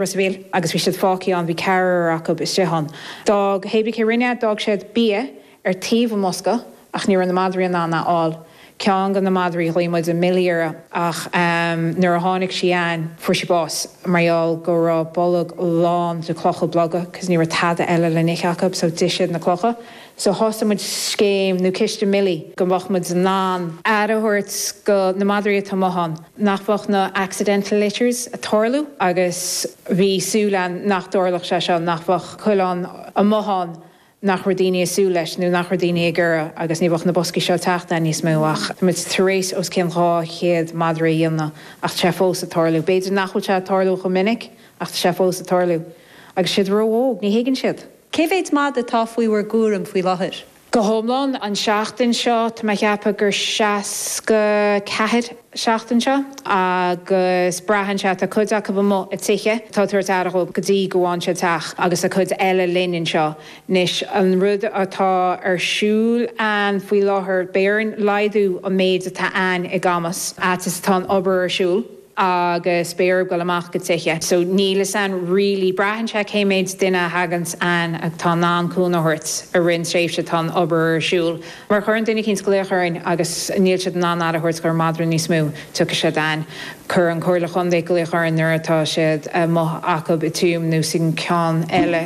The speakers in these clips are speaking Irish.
Ros a' Mhíl, agus bhí siad fágthaí ann, bhí ceathrar acub istigh ann. D'fhág, hébrí cé rinne é, d'fhág siad bia ar taobh an bhosca ach ní raibh na madraí in ann é a fháil. Ceann go na madraí ghlaoigh muid Millie uirthi ach nuair a tháinig sí a'inn, fuair sí bás mar gheall go raibh a bolg lán de chlocha beaga cause ní raibh tada eile le n-ithe acub so d'ith siad na clocha. So thosaigh muid scéim nó Ciste Millie go mbeadh muid in ann aire thabhairt go na madraí atá amuigh ann. nach mbeadh na accidental litters a' tarlú agus bhí súil a'inn nach dtarlódh sé seo, nach mbeadh coileán amuigh ann nach raibh daoine a' súil leis nó nach raibh daoine ag iarraidh agus ní bheadh na boscaí seo a' teacht ann níos mó ach tá muid tar éis os cionn 200 madra a dhéanamh ach tá sé fós a' tarlú. B'fhéidir nach bhfuil sé a' tarlú chomh minic ach tá sé fós a' tarlú agus tá siad ró-óg, ní thuigeann siad. Cé mhéid madadh atá faoi bhur gcúram faoi láthair? go hiomlán an tseachtain seo. Tá mé a cheapadh gur 64 seachtain seo agus braitheann sé, tá cuid acu amuigh i dtithe, atá ag tabhairt aire dhóibh go dtí go bhfághann siad teach agus tá cuid eile linn anseo. Anois an rud atá ar siúl ann faoi láthair, beidh orainn laghdú an méid atá ann i gCamus, a fhad is atá an obair ar siúl. agus beifear ag dul amach go tithe so níl fhios a'inn really braitheann sé cé méid duine a thaganns a'inn atá in ann cúnamh thabhairt i rith an tréimhse atá an obair ar siúl má chuireann duine eicínt glaoch orainn agus níl siad in ann aire a thabhairt dhon madra níos mó tiocfaidh siad a'inn cuireann an Chomhairle Chontae glaoch orainn nuair atá siad amuigh acub i Tuaim nó sa cheann eile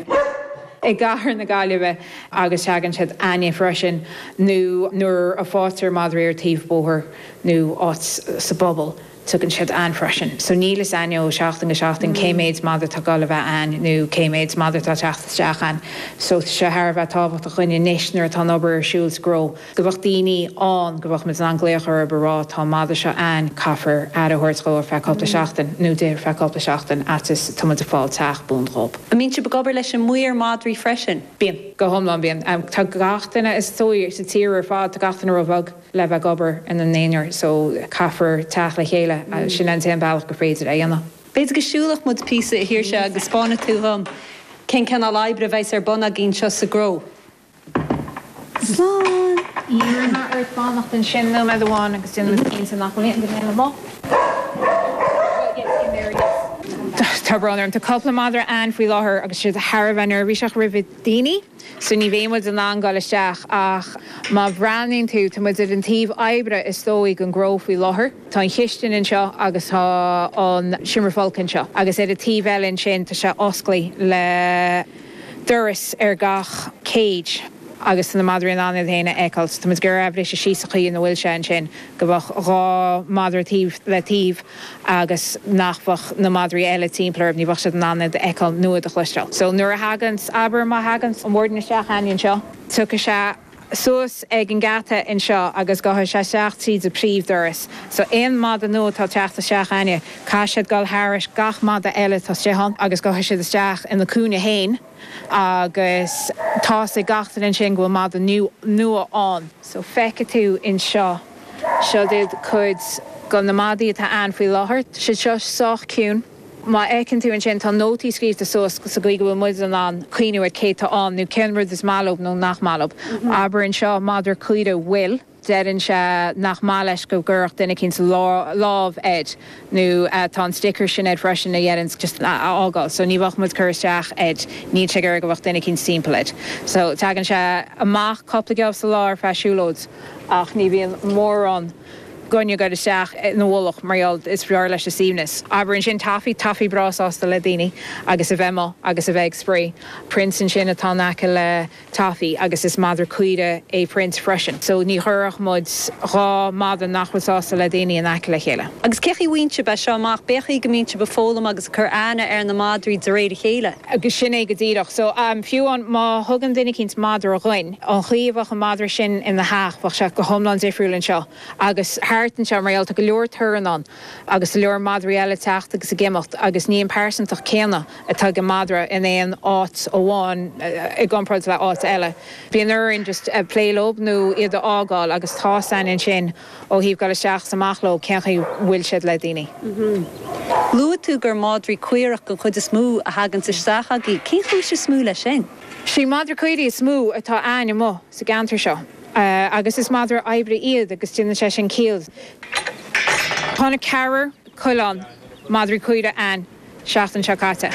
i gcathair na Gaillimhe agus teagann siad a'inne freisin nó nuair a fáitear madraí ar taobh bóthair nó áit sa bpobal. Teagann siad a'inn freisin. So níl fhios a'inn ó seachtain go seachtain cé méid madadh atá ag goil a bheith a'inn nó cé méid madadh atá teacht isteach a'inn. So tá sé thar a bheith tábhachtach dhuinn anois nuair atá an obair ar siúl sa gcró, go bheadh daoiní ann, go bheadh muid in ann glaoch orab a rá tá an madadh seo a'inn, caithfear aire a thabhairt dhó ar feadh cúpla seachtain nó di ar feadh cúpla seachtain a fhad is atá muid ag fáil teach buan dhób. An mbíonn sibh ag obair leis an maor madraí freisin? Bíonn. Go hiomlán bíonn. Tá gach duine is dóigh sa tír ar fad, tá gach duine ró bheag. le bheith ag obair ina n-aonar so caithfear teacht le chéile. Sin é an t-aon bhealach gur féidir é a dhéanamh. B'fhéidir go siúlfadh muid píosa a Shaoirse agus spáinfidh tú dhom cén cineál oibre a bheas ar bun agaibh anseo sa gcró. Slán! Iarrfaidh mé ort fanacht ansin nóiméad amháin agus déanfaimid cinnte nach bhfuil aon duine eile amuigh. Well, yes, in there, yes. Tá brón orm, tá cúpla madra ann faoi láthair agus tá siad thar a bheith neirbhíseach roimh. daoine so ní bheidh muid in ann dul isteach ach má bhreathnaíonn tú, tá muid ar an taobh oibre is dóigh den gcró faoi láthair. Tá an chistin anseo agus tá an seomra folctha anseo agus ar an taobh eile ansin tá sé osclaí le doras ar gach cage agus tá na madraí in ann iad féin a fheiceáil so tá muid ag iarraidh é a bhriseadh síos sa chaoi ina bhfuil sé ansin go bheadh dhá mhadra taobh le taobh agus nach bhfeadh na madraí eile timpeall orthub, ní bheadh siad in ann iad a fheiceáil nó iad a chloisteáil. So, nuair a thaganns, abair, má thaganns an bhord isteach againn anseo, tiocfaidh sé suas ag an geata anseo agus gabhfaidh sé isteach tríd an príomh doras. So, aon mada nua atá ag teacht isteach againn, caithfidh siad dul thairis gach mada eile atá istigh ann agus gabhfaidh siad isteach ina cúinne féin agus tá a fhios ag gach duine ansin go bhfuil mada nua ann. So, feicfidh tú anseo. Siod iad cuid de na madaí atá ann faoi láthair. Tá siad seo sách ciúin. Má fheiceann tú ansin, tá nótaí scríobhta suas sa gcaoi go bhfuil muid in ann cuimhneamh ar cé atá ann nó cén rud is maith leob nó nach maith leob. Abair anseo, madra caorach Will, deireann sé nach maith leis go gcuirfeadh duine eicínt lámh air. nó tá an sticker sin air freisin a dheireanns just a fhágáil so ní bheadh muid cur isteach air níl sé ag iarraidh go bheadh duine eicínt timpeall air so teagann sé amach cúpla geábh sa lá ar feadh siúlóid ach ní bhíonn mórán d'aon duine ag goil isteach ina mhullach mar gheall is fearr leis a suimhneas abair ansin taffy taffy tá sí breá sásta le daoine agus a bheith amuigh agus a bheith ag spraoi prince ansin atá in aice le Taffy, agus is madra caorach é Prince freisin, so ní chuirfeadh muid dhá mhadra nach bhfuil sásta le daoine in aice le chéile. Agus cén chaoi a mbíonn sibh ag fáil é seo amach? B'fhéidir go mbíonn sibh ag foghlaim agus ag cur aithne ar na madraí de réir a chéile? Agus sin é go díreach. So fiú amháin má thugann duine eicínt madra dhuinn, an chaoi a bheadh an madra sin ina dteach, bheadh sé go hiomlán difriúil anseo agus thart anseo mar gheall tá go leor torann ann. Agus go leor madraí eile teacht agus ag imeacht agus ní an pearsantacht céanna atá ag an madra in aon áit amháin i gcomparáid le áit eile. Bíonn sé orainn just plé leo nó iad a fhágáil agus tá a fhios againn ansin ó thaobh dul isteach is amach leo cén chaoi bhfuil siad le daoine. Luaigh tú gur madraí caorach den chuid is mó a thaganns isteach agaibh. Cén chúis is mó le sin? Is iad madraí caorach is mó atá againn amuigh sa gceantar seo. Agus is madra oibre iad agus déanann sé sin ciall. Tháinig ceathrar coileán, madraí caorach, againn an seachtain seo caite.